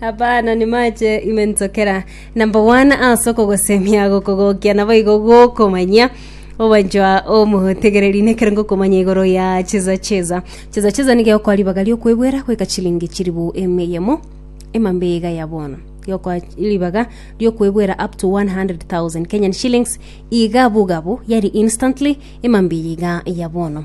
Abana nimache ime ntokera number one ase okogosemia gokogokia naboigo gokomanyia obanchwa omotegereri nekero ngokomanya igoro ya cheza cheza cheza cheza nigeokoa ribaga riokwebwera goika chilingi chiribu eme yemo emambe iga ya bono geokoa ribaga riokwebwera up to 100,000 Kenyan shillings iga bugabu yari instantly emambe eye iga ya bono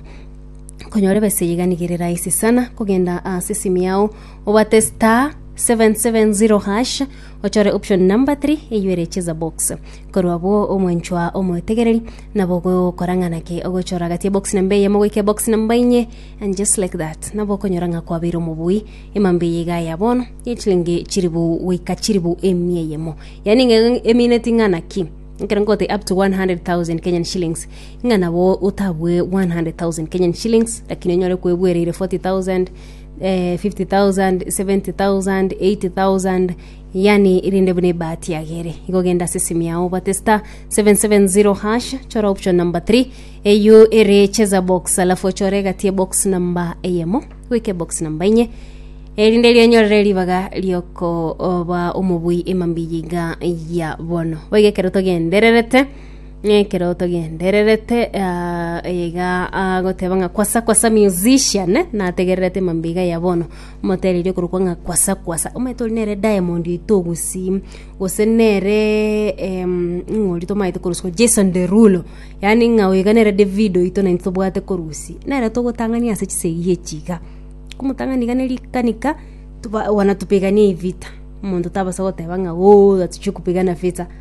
konyora ebesa eye iga nigo ere rahisi sana kogenda ase esimi yao Obate star 770#, ochore option number 3 eyio ere cheza box. Korwa abwo omwanchwa omwetegereri nabo gokora ng'a naki ogochora gati ebox namba eyemo goika ebox namba inye and just like that nabo okonyora ng'a kwabeire omobui emambe eye iga ya bono yechilingi chiribu goika chiribu emia eyemo yani ng'a emineti ng'a naki ekero ngote up to 100,000 Kenyan shillings ng'a nabo otabwe 100,000 Kenyan shillings lakini onyore kwebwereire 40,000 50,000, 70,000, 80,000, yani erinde buna ebahati yage ere igo genda ase esimi yao obate star 770 hash chora option number 3 eyio ere cheza box alafu ochore egati ebox number eyemo goika ebox number enye erinde rionyorere ribaga riokoba omobui emambia iga ya bono boigo ekero togendererete Ekeroto gendererete ah, iga agoteba ng'a kwasa kwasa musician nategererete emambe iga ya bono motererie okorokwa ng'a kwasa kwasa omanyete ori nere diamond oito gusii gose nere em, ng'ori tomanyete korusia jason derulo yaani ng'a oyo iga nere davido oito naintwe tobwate korusia nere togotang'ania ase chisegi echi iga komotang'ani iga ne rikanika toba- wanatupigania evita omonto tabasa goteba ng'a ooh atichie kupigana vita.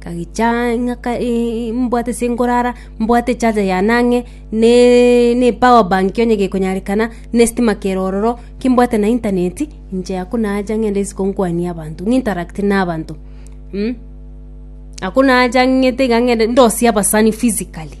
Nkagicha ng'aka mbwate ase nkorara, mbwate echaja yane ang'e, ne nepower bank onye gekonyarekana, na estima kere ororo, kimbwate na intaneti, inche aywo nacha ng'ende isiko nkwanie abanto, ng'interact na abanto mh. Aywo nacha ng'ete iga ng'ende ndosie abasani physically,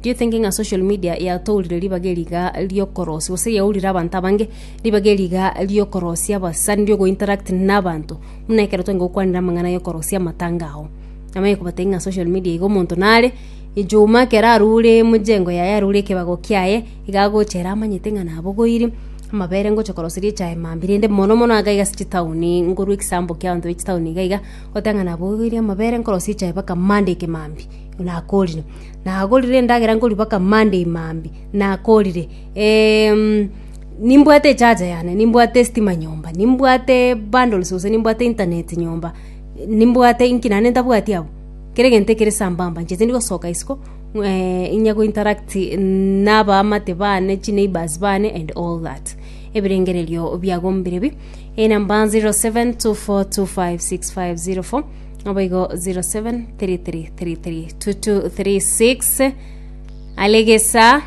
do you think ng'a social media yatourire ribaga eri iga riokorosia gose yaurire abanto abange ribaga eri iga riokorosia abasani riogointeract na abanto. Buna ekero twenge gokwanera amang'ana y'okorosia amatanga ao, namanye kobatebia ng'a social media iga omonto nare, ejuma ekero arure emejengo yaye arure ekebago kiaye, iga agocha ere amanyete ng'a nabogoiri, amabere ngocha koroseria echae mambia rende mono mono iga iga ase chitaoni, nkorwa egesample kia abanto ba chitaoni iga iga, oteba ng'a nabogoiri amabere nkorosia echae mpaka monday eke mambia, nakorire. Nagorire endagera nkoria mpaka monday mambia, nakorire. nimbwate echaja yane, nimbwate estima nyomba, nimbwate bundles gose nimbwate internet nyomba, nimbwate inki naende ntabwati abwo? Kera egento ekere sambamba, inche tindi gosoka isiko inya go interact na abaamate bane, chineighbours bane and all that. Ebirengererio biago mbire bi, eyi namba 0724256504, naboigo 0733332236, alegesa.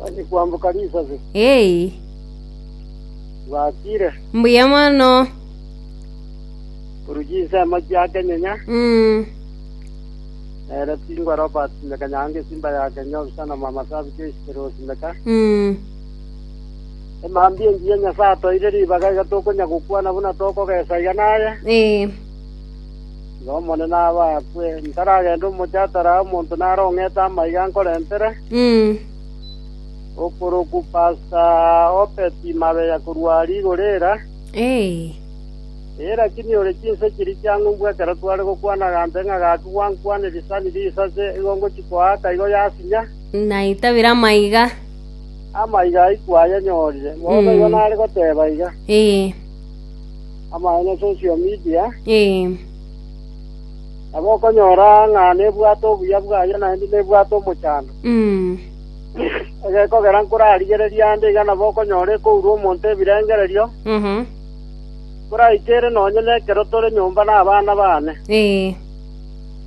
Onye kwamboka risase, Hey, bwatire, mbuya mono. korwa chinsemo chia kenyenya, Mm. nere tingwa Robert Simeka Nyange Simba ya Kenya obisana mwa masabi Joyce Simeka. Mm. Emambi engiya Nyasaye atoire ribaga iga tokonya gokwana buna tokogesa iga naye. Eh. Tiga Omonene abe akwe. Ntaragende omochie atari aye omonto nare ong'ete amaiga ankorentere. Okorokwa Pasta Obedi Mabeya korwa rigoro era, ee, rakini ore chinse chiria chia ng'umbu ekero tware gokwana agambe ng'a gaki gwankwanire risani risase, igo ngochia koaaka igo yasinya. Naitabire amaiga. Amaiga aikwa ayanyorire. Bono igo nare goteba iga. amaene social media, Ee. nabo okonyora ng'a nebwate obuya bwaye naende nebwate omochando. Mm. Egekogera nkorarigereria ande iga nabo okonyora ekourwa omonto ebirengererio, Aha. koraike ere nonye nekero tore nyomba nabana bane. Ee.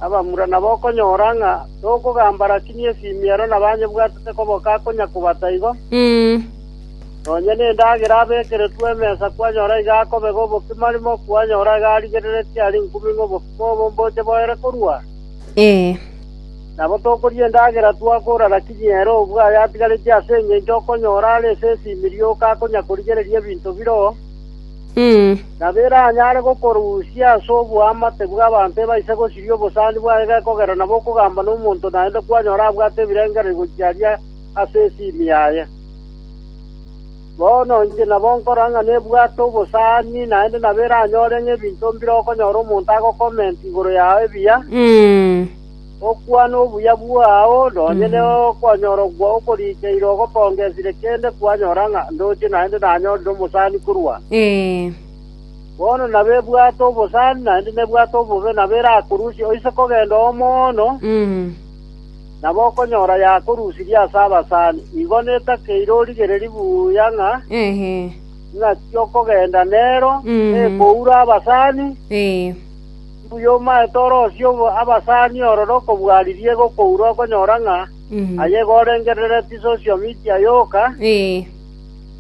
Abamura nabo okonyora ng'a tokogamba rakini esimi ero nabanyebwatete koboka akonya kobata igo, Mm. Nonya nendagera abekeretwe emesa kwanyora iga akobega obokima arimo kwanyora iga arigereretie aria inkuming'a obokima obo mboche boere korua? Ee. Nabo tokoria endagera twakora naki nyere obwe aye atigaretie ase engencho okonyora are esese ime rioka akonya korigereria ebinto bire oo, nabo eranyare gokorusia ase oboamate bw'abanto ebaise gosiria obosani bwaye gekogera nabo okogamba nomonto naende kwanyora abwate ebirengererio gochia aria ase ase ime yaye. “Bono inche nabo nkora ng'a nebwate obosani, naende nabo eranyore ng'a ebinto mbire okonyora omonto agokomenti igoro yao ebiya. Okwane obuya bwao, nonya nokonyorokwa okorikeirwe ogotonga esire kende kwanyora ng'a ndoche naende nanyorire omosani korwa aa. Bono nabo ebwate obosani, naende nebwate obobe, nabo erakorusie oise kogenda oo mono. Nabo okonyora yakorusirie ase abasani, igo netakeire origereri buya ng'a ing'aki okogenda nero, nekoura abasani, mbuya omaete orosie abasani ororo kobua riria egokoura okonyora ng'a aye igo orengereretie social media yoka,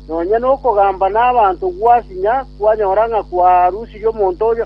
nonya nokogamba nabanto gwasinya kwanyora ng'a kwarusirie omonto oria.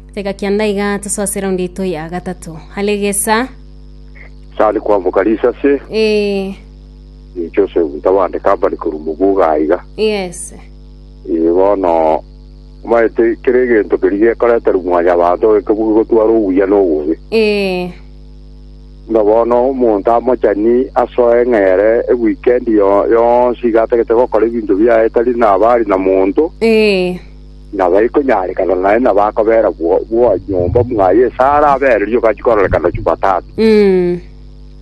Tega kianda iga tosoase eraundi yaito ya gatato. Alegesa. Tari kwamoka risase. Eh. Eh, Joseph ntabande kabari korwa moguga aiga. Yes. Eh, bono maete kere egento keri gekoreterwa mwanya abanto oeke bugi gotwara obuya na obobe. Eh. Nga bono omonto amochani asoe ng'ere ewikendi yo- yonsi iga atagete gokora ebinto biaye tari nabari na monto. Eh. nabaikonyaarekana naye na bakobeera bwo- bwanyomba mwaye esara abeererie ogachia kororekana Jumatatu. Mm.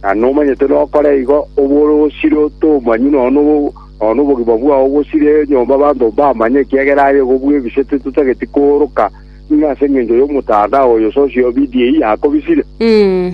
Na nomanyete nokore igo obe ore osire otomanywe nonya nobo- nonya nobogima bwao bosire enyomba abanto mbamanye ekiagera aye igo bwebisete totageti kooroka ng'a ase engencho y'omotandao oyo sosi obidiei yakobisire. Mm.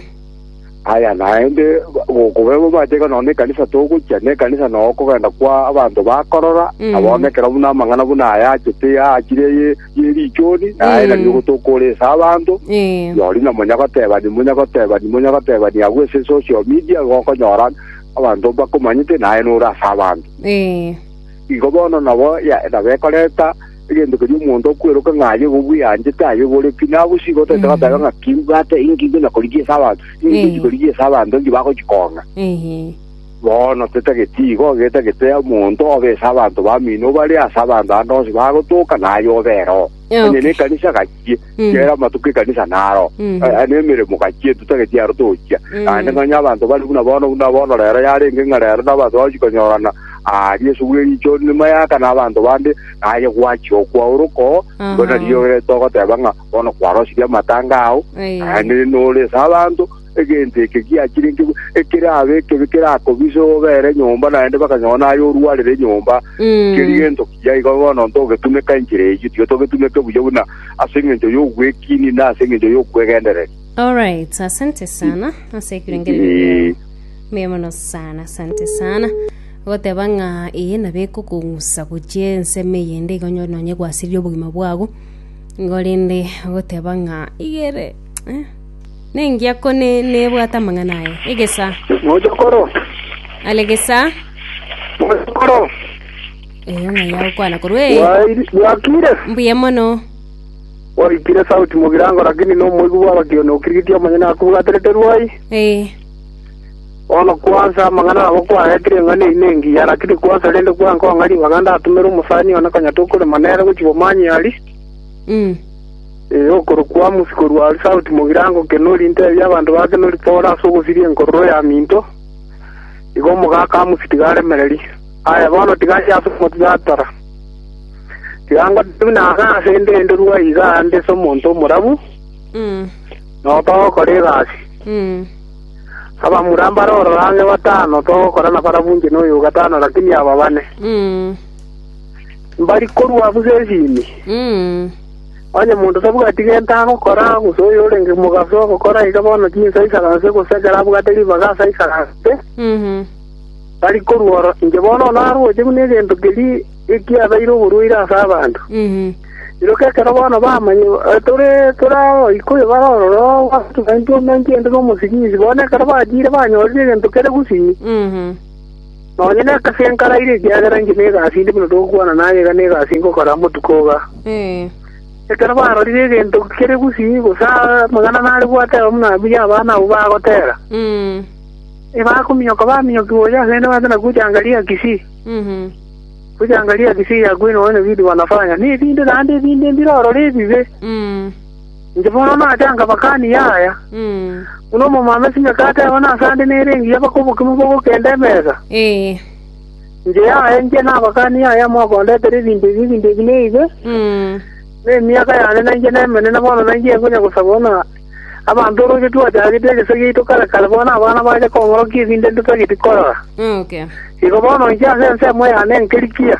Aya naende gokobe mateka nonya nekanisa togochia, nekanisa nonya okogenda kwa abanto bakorora, Mm. na bono ekero buna amang'ana buna aya achete achire ye ye richoni, naye Mm. nario gotokora ase abanto, Eh. yori na monya gotebani monya gotebani monya gotebani agwo ase social media gokonyora abanto bakomanyete naye nore ase abanto. Eh. Igo bono nabo ya nabo ekoreta egento keria omonto okweroka ng'a aye igo bweanchete, aye igo ore pi. Na abwo chigo toete Mm. goteba ng'a ki mbwate inki inki na korigia ase abanto, inki Eh. chikorigia ase abanto inki bagochikong'a. Ehe. Bono tetageti igo, getagete omonto obe ase abanto bamino bare ase abanto ande onsi bagotoka, naye obe ere oo. Onye Okay. nekanisa gachie. Mm. kera amatuko ekanisa naro Mhm. Eh, nemeremo gachie tutagetie aro tochia Mm. naende ng'anya abanto bari buna bono buna bono rero yarenge ng'a rero na abanto bagochi konyorana ah, riesu bwe richo nyuma yaka na abanto bande naye gwachi okwauroko Aha. mbona riyo rero togoteba ng'a bono kwarosirie amatanga ao Aya. naende nore ase abanto egento eke giachire nki ekerabe ekebe kerakobise obere nyomba naende bakanyora naye orwarire nyomba Mm. keri gento kiya igo bono ntogetumeka enchera eyio tiga togetumeke buya buna ase eng'encho y'ogwekini na ase eng'encho y'okwegendereri Alright, asante sana ase ekirengererio giao. Mbuya mono sana, asante sana. Goteba ng'a eye nabo ekokong'usa gochia ensemo eyende igo onye nonye gwasirie obogima bwago. Igo rende goteba ng'a igere eh, Nengiya ko nebwate amang'ana aye. Egesaa. Mochokoro. Are gesaa. Mochokoro. Eyo ng'ai agokwana korwa ee. Bwa- Bwakire. Mbuya mono. Oikire sauti mogirango lakini nomoigu bwabakiono okirigiti omanye nakobwaterete rwai. Ee. Ono kwanza amang'ana abo kwaetire eng'ana eyi nengiya lakini kwanza rende kwankong'a ribaga ndatumere omosani one konyatokorema nere gochia bomanyari. Mm. Ee, okorokwa Amosi korwa aria sauti mogirango Kenori inteebie abanto ba Kenori Pore ase ogosiria enkororo ya minto, igo omogaka Amosi tiga aremererie. Aye bono tiga aye ase omotiratara. Tiga ngote buna aka aase ndenderwe iga nde omonto omorabu, na otogokora egasi. Abamura mbare ororo ang'e batano togokora na barabwo inche noyo o gatano lakini aba bane, mbari korua busa esimi. Onye monto tabwati gento agokora, gose oyorenge mogaso ogokora iga, bono tinsa aisaranse, gose ekero abwate ribaga ase aisaranse, tari korwa oro. Inche bono narwoche buna egento keria ekiabeire oborwaire ase abanto. Iroka ekero bono bamanya tore abagoika oyo bare ororo, ogochika intwe omenche inde nomosibisi, bono ekero bachire banyorire egento kere gusii. Nonya nekase inkaraire, ekiagera inche negasi inde buna togokwana naye, iga negasi ingokora botuko iga. Ekero barorire egento kere bosii, gose amang'ana nare gwateba buna abuya abana abwo bagotera, ebakominyoka baminyoki gocha ase ende bagachaka gocha angaria kisii, gocha angaria kisii ya kwenu, onye vitu wanafanya. Nebinde naende ebinde mbire ororo ebibe. Inche bono nachanga bakanie aya, buna omomama esime kateba nase ande nere engiya bake obokima bw'ogokenda emesa. Ee. Inche yaya inche nabakanie aya mokondetera ebinto ebi, ebinto ebi neibe, na emiaka yane nainche nemenene bono nainche nkonya gosaba buna abanto oroche twachagete egese giaito kare kare bono abana bacha kong'orokia ebinto ntotageti korora. Okay. Igo bono inche ase ensemo yane nkerikia.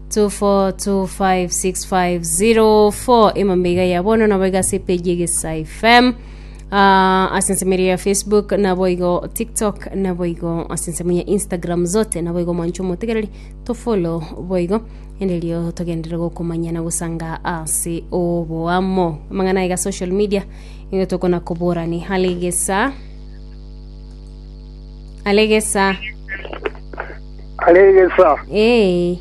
2425650 emambe iga ya bono nabo iga ase epeji egesa fm Ah, ase ensemo eria ya facebook nabo igo tiktok nabo igo ase ensemo ya instagram zote nabo igo mwancho motegereri tofolo boigo enderio togendere gokomanya na gosanga ase oboamo amang'ana iga social media igo tokona koborani hale gesa Alegesa. Aregesa. Ee.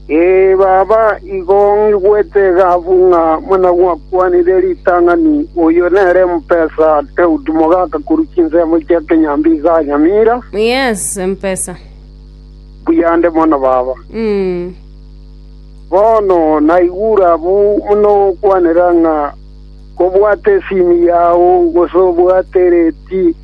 Ee baba, igo ngigwete egaabu ng'a buna gwakwanire ritang'ani, Oyo nere mpesa Daudi mogaka korwa chinsemo chia kenyambi iga anyamira. Yes, mpesa. Buya nde mono baba. Mm. Bono naigure abu buna okwanera ng'a Kobwata esini yao, gose obwate ereti,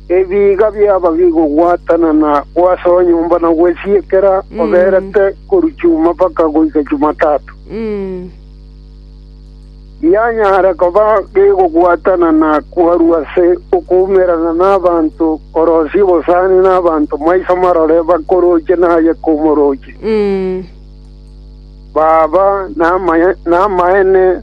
ebiiga biaba bigogwatana na gw'ase onyomba na gwesiekera oberete korwa chuma mpaka goika Chumatato. Gianyare koba gegogwatana na kwarwa ase okoumerana nabaanto korosia obosani nabaanto maiso marore bakoroche naye komoroche. Baba namaene,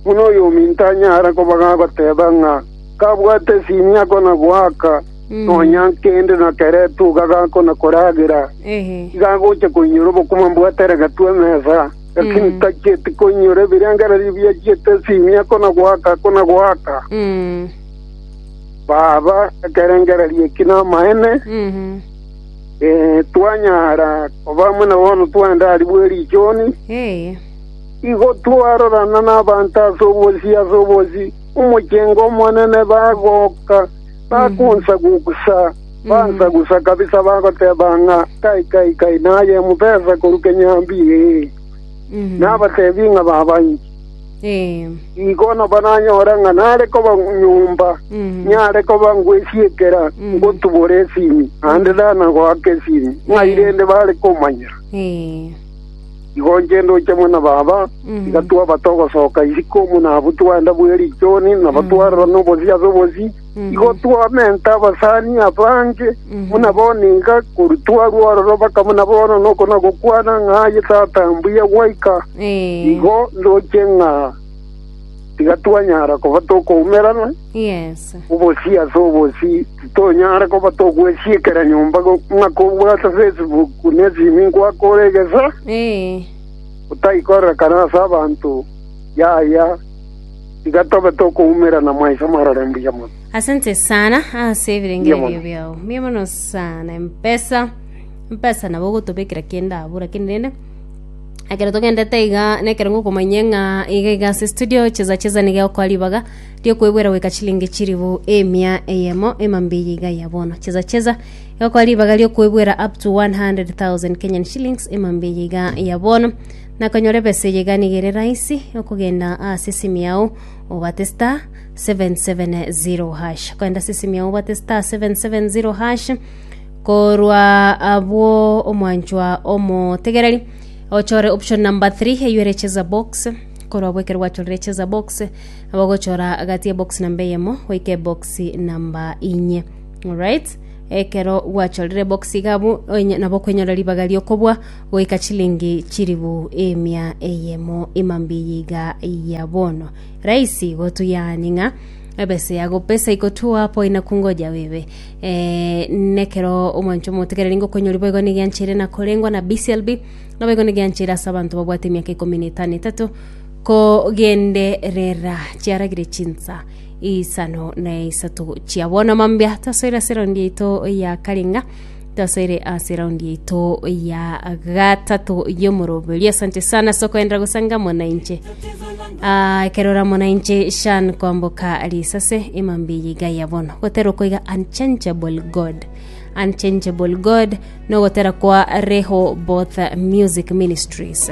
buna oyominto anyare koba gagoteba ng'a kabwate esimia akona-goaka, nonya kende nakeretwe iga gakona koragera, iga agocha koinyora obokima mbwate eregetwe emesa, lakini tachieti koinyora ebirengererio biachiete esimia akona-goaka, akona-goaka. Baba, ekerengererio eki namaene. Eh, twanyara koba amo na bono twende aria bwe richoni, Ee. igo twarorana n'abanto ase obosi ase obosi, omochengo omonene bagoka, bakonsagusa, bansagusa kabisa, bagoteba ng'a kai kai kai, naye emobesa korwa kenyambie, ee. Mhm. Nabatebi ng'a baba inche. Nigo nabo nanyore ng'a nare koba nyomba, niare koba ngwesiekera, ngotubora esimi, naende tana goaka esimi, ng'ai rende bare komanyera? Igo inche ndoche amo na baba, tiga twabate ogosoka isiko, omonabwo twende bwe richoni, nabo twarorana obosio ase obosio. Igo twamenta abasani abange buna boniga korwa twarwa ororo mpaka buna bono, na oko nagokwana ng'a aye tata mbuya gwaika. Igo ndoche ng'a tiga twanyara koba tokoumerana obosio ase obosio, titonyara koba togwesiekera nyomba ng'a kobwate Facebook na esimi ngwakore egesa, otaikorera kana ase abanto yaya. Tiga tobe tokoumera na maiso marore mbuya mono. Asante sana ase ebirengererio Mbuya mono. biao mbuya mono sana empesa empesa nabo ogotobekera kende abwo lakini rende ekero togendete iga nekero ngokomanyia ng'a iga iga ase estudio chesa chesa niga egokoa ribaga riokoebwera goika chilingi chilifu emia eyemo emambia eye iga ya bono chesa chesa egokoa ribaga riokoebwera up to 100,000 Kenyan shillings emambia eye iga ya bono na konyora ebesa eye iganiga ere rahisi okogenda ase esimu yao obate star 770 hash okogenda ase esimu yao obate star 770 hash korwa abwo omwanchwa omotegereri ochore option number 3 eywo ere cheza box korwa abwo ekero gwachorire cheza box nabo ogochora gati ya box namba eyemo goika ebox namba inye alright ekero gwachorire box iga abwo onye- nabo okonyora ribaga ri'okobua Goika chilingi chilifu emia eyemo ima mbiya iga ya bono. Raisi gotu yaani ng'a ebesa yago pesa ikotwoa apo inaku ngoja bibe. Eh, nekero omwancho motegereri ngokonyori boigo nigianchire na korengwa na BCLB na boigo nigianchire ase abanto babwate emiaka ikomi na etano etato kogenderera chiaragire chinsa isano na isato chia bono mambia tasoira seraundi yaito ya karinga Tosoire ase raundi yaito ya gatato y'omoroberio. Asante sana sokoendera gosanga amo na inche. Ah, ekero ore amo na inche shan kwamboka risase emambi yiga ya bono. Gotera okoiga unchangeable God. Unchangeable God nogotera kwa Reho Both Music Ministries.